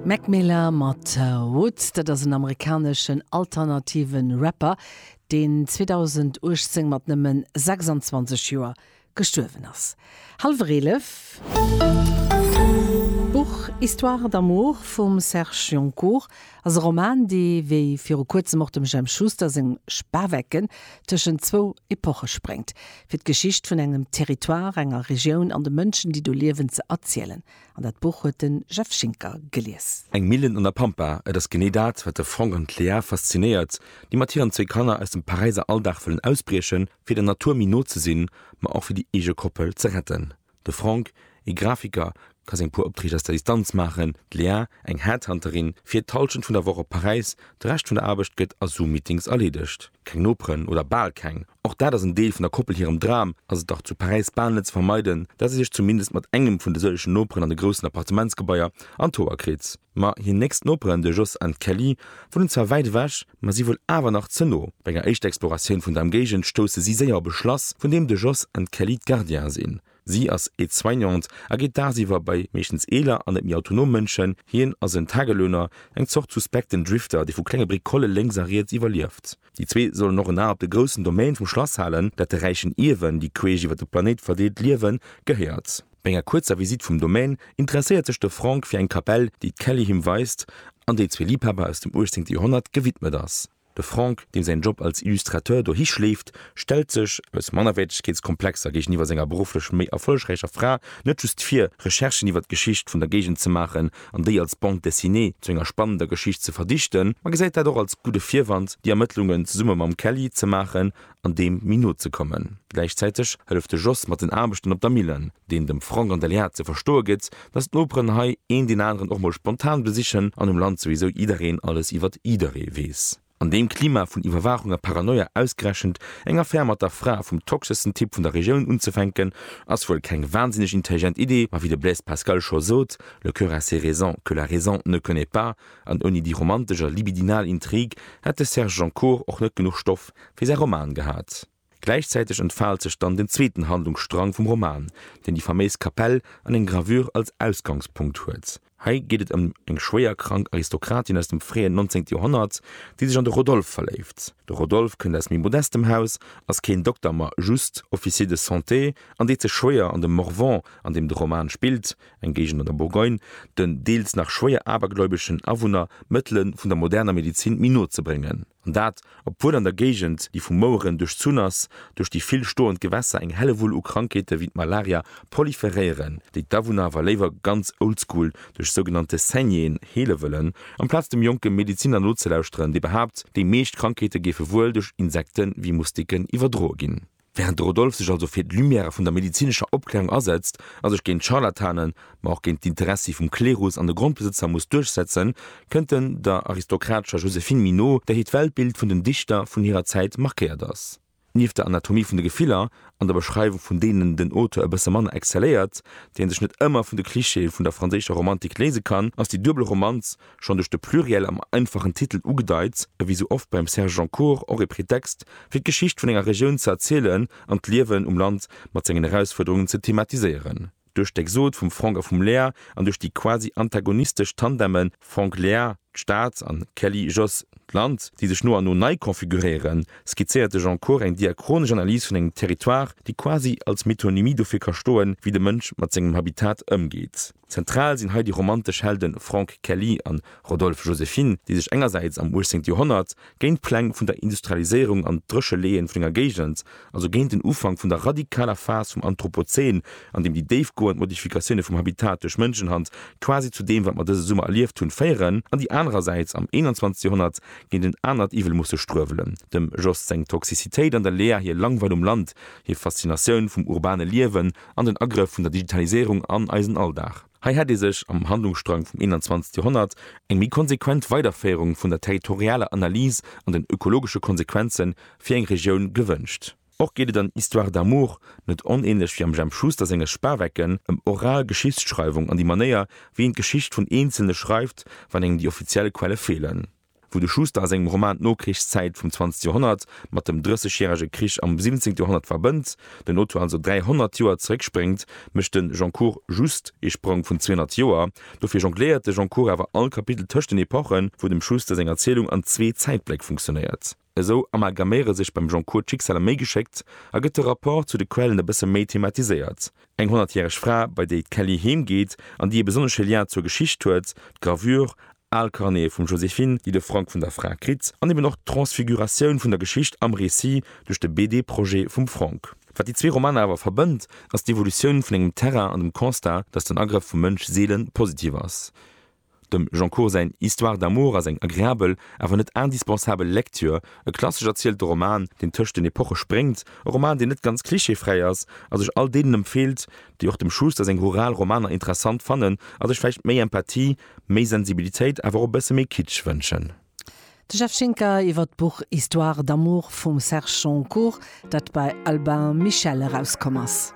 Mac Miller mat Woods, dat ass en amerikaneschen alternative Rapper, deen 2018 mat nëmme 26 Joer gestuerwen ass. Hallwer eelef. D'Buch Histoires d'amour vum Serge Joncour ass e Roman, dee wéi viru kuerzem och dem Jemp Schuster seng Spawecken tëschent zwou Epoche spréngt, fir d'Geschicht vun engem Territoire, enger Regioun an de Mënschen, déi do liewen, ze erzielen. An dat Buch huet de Jeff Schinker gelies. Eng Millen an der Pampa, et ass genee dat, wat de Franck an d'Léa faszinéiert, déi mat hiren zwee Kanner aus dem Paräiser Alldag wëllen ausbriechen, fir der Natur méi no ze sinn, ma och fir déi eege Koppel ze retten. De Franck, ee Grafiker, ka seng puer Optreeg aus der Distanz maachen, d'Lea, eng Headhunterin, fiert d'Hallschent vun der Woch op Paräis, de Rescht vun der Aarbecht gëtt a Zoom-Meetings erleedegt. Keng Noperen, oder bal keng. Och dat ass en Deel vun der Koppel hirem Dram, ass et dach zu Paräis bal net ze vermeiden, dat se sech zumindest mat engem vun de sëllegen Noperen an de groussen Appartementsgebaier an d'Hoer kritt. Ma hir nächst Noperen, de Jos an d'Kelly, wunnen zwar wäit ewech, ma si wuel awer nach ze no. Bei enger éischter Exploratioun vun der Emgéigend stousse si séier op e Schlass, vun deem de Jos an d'Kelly d'Gardiene sinn. Si ass Aide-soignante a geet dagsiwwer bei meeschtens eeler an net méi autonom Mënschen, hien ass en Tagelöhner, eng Zort suspekten Drifter, dee vu klenge Bricole lénks a riets iwwerlieft. Déi zwee sollen och en A op de groussen Domaine vum Schlass halen, dat de räichen Ierwen, déi queesch iwwer de Planéit verdeelt liewen, gehéiert. No enger kuerzer Visitt vum Domaine interesséiert sech de Franck fir eng Kapell, déi d'Kelly him weist an déi zwee Liibhaber aus dem 18. Joerhonnert gewidmet ass. De Franck, deem säin Job als Illustrateur dohi schleeft, stellt sech, aus Mannerwäertegkeetskomplexer géigeniwwer senger berufflech méi erfollegräicher Fra, net just vir, Recherchen iwwer d'Geschicht vun der Géigend ze maachen, an déi als Bande dessinée zu enger spannender Geschicht ze verdichten, ma gesäit dat och als gudde Virwand, déi Ermëttlungen zesumme mam Kelly ze maachen an deem méi no ze kommen. Gläichzäiteg hëlleft de Jos mat den Aarbechten op der Millen, deen dem Franck an der Léa ze verstoe gëtt, dass d'Noperen hei een deen aneren och mol spontan besichen an um Land souwisou jiddereen alles iwwert jidderee weess. An deem Klima vun Iwwerwaachung a Paranoia ausgerechent eng Affär mat der Fra vum toxeschsten Typ vun der Regioun unzefänken, ass wuel keng wahnsinneg intelligent Idee, ma wéi de Blaise Pascal scho sot, Le cœur a ses raisons que la raison ne connaît pas, an ouni déi romantesch a libidinal Intrigue hätt de Serge Joncour och net genuch Stoff fir säi Roman gehat. Gläichzäiteg entfaalt sech dann den zweeten Handlungsstrang vum Roman, deen déi faméis Kapell an eng Gravure als Ausgangspunkt huet. Hei geet et ëm eng schwéierkrank Aristokratin aus dem fréien 19. Joerhonnert, déi sech an de Rodolphe verléift. De Rodolphe kënnt aus méi modestem Haus, ass keen Dokter, ma just Officier de santé an deet sech schwéier an dem Morvan, an deem de Roman spillt, eng Géigend an der Bourgogne, den deels nach schwéier abergläubeschen Awunner d'Mëttele vun der moderner Medezin méi no ze bréngen. An dat, obwuel an der Géigend, déi vu Moueren duerchzunn ass, duerch déi vill stoend Gewässer eng Hellewull u Krankheete wéi d'Malaria proliferéieren, déi d'Awunner awer léiwer ganz oldschool duerch sougenannte Saignéeën heele wëllen, amplaz dem jonke Medeziner nozelauschteren, dee behaapt, déi meescht Krankheete géife wuel duerch Insekte wéi Moustiquen iwwerdroe ginn. Während de Rodolphe sech also fir d'Lumière vun der medezinescher Opklärung asetzt a sech géint d'Scharlatanen, ma och géint d'Interessi vum Klerus an de Grondbesëtzer muss duerchsetzen, kënnt en der aristokratescher Joséphine Minot, där hiert Weltbild vun den Dichter vun hirer Zäit markéiert ass. Nieft der Anatomie vun de Gefiller an der Beschreiwung vun deenen den Auteur e bësse manner excelléiert, déi en sech net ëmmer vun de Clichéë vun der franséischer Romantik léise kann, ass déi duebel Romanz schonn duerch de Pluriel am einfachen Titel ugedeit, e wéi sou oft beim Serge Joncour och e Pretext, fir d'Geschicht vun enger Regioun ze erzielen an d'Liewen um Land mat sengen Erausfuerderungen ze thematiséieren. Duerch d'Exode vum Franck a vum Léa an duerch déi quasi antagonistesch Tandeme Franck-Léa, d'Stad, an Kelly-Jos, d'Land, déi sech no an no nei konfiguréieren, skizzéiert de Joncour eng diachronesch Analys vun engem Territoire, déi quasi als Metonymie dofir ka stoen, wéi de Mënsch mat sengem Habitat ëmgeet. Zentral sinn hei déi romantesch Helde Franck Kelly a Rodolphe Joséphine, déi sech engersäits am 18. Joerhonnert géint d'Pläng vun der Industrialiséierung an d'Drécheleeën vun enger Géigend, also géint den Ufank vun der radikaler Phas vum Anthropozän, an deem déi déifgoend Modifikatioune vum Habitat duerch Mënschenhand quasi zu deem, wat mer dëse Summer erlieft hunn, féieren, an déi anerersäits am 21. Joerhonnert géint en anert Iwwel musse struewelen, dem Jost seng Toxicitéit an der Lea hir Langweil um Land, hir Faszinatioun vum urbane Liewen an den Agrëff vun der Digitaliséierung an eisen Alldag. Hei hätt ee sech am Handlungsstrang vum 21. Joerhonnert eng méi konsequent Weiderféierung vun der territorialer Analys an den ökologesche Konsequenze fir eng Regioun gewënscht. Och geet et an Histoire d'amour, net onänlech wéi am Jemp Schuster senge Spawecken, ëm oral Geschichtsschreiwung an déi Manéier, wéi een d'Geschicht vun Eenzelne schreift, wann engem déi offiziell Quelle feelen. Wou de Schuster a sengem Roman d'Nokrichszäit vum zwanzegt Joerhonnert mat dem Drëssegjärege Krich am siwenzéngte Joerhonnert verbënnt, den Auteur also 300 Joer zeréckspréngt, mécht de Goncourt just ee Sprong vun 200 Joer. Dofir jongléiert de Goncourt awer all Kapitel tëscht den Epochen, wou dem Schuster seng Erzielung an zwee Zäitbléck funktionéiert. Esou amalgaméiere sech beim Goncourt d'Schicksaler méi geschéckt a gëtt de Rapport zu de Quellen e bësse méi thematiséiert. Eng honnertjäreg Fra, bei déi d'Kelly heem geet an déi e besonnesche Lien zur Geschicht huet, d'Gravure, al Carnete vum Joséphine, déi de Frank vun der Fra kritt, an eben och d'Transfiguratioun vun der Geschicht am Récit duerch de BD-Projet vum Frank. Wat déi zwee Romaner awer verbënnt, ass d'Evolutioun vun engem Terrain an dem Constat, datt den Agrëff vum Mënsch seele positiv ass. Dem Jean Cour säin Histoire d'amour ass eng agreabel, awer net indispensabel Lecture. E klassesch erzielten Roman, deen tëscht den Epoche spréngt, e Roman, deen net ganz klischeefräi ass a sech all deenen empfeelt, déi och dem Schuster seng rural Romaner interessant fannen a sech vläicht méi Empathie, méi Sensibilitéit, awer och e bësse méi Kitsch wënschen. De Jeff Schinker iwwer d'Buch Histoire d'amour vum Serge Jean Cour, dat bei Albin Michel erauskomm ass.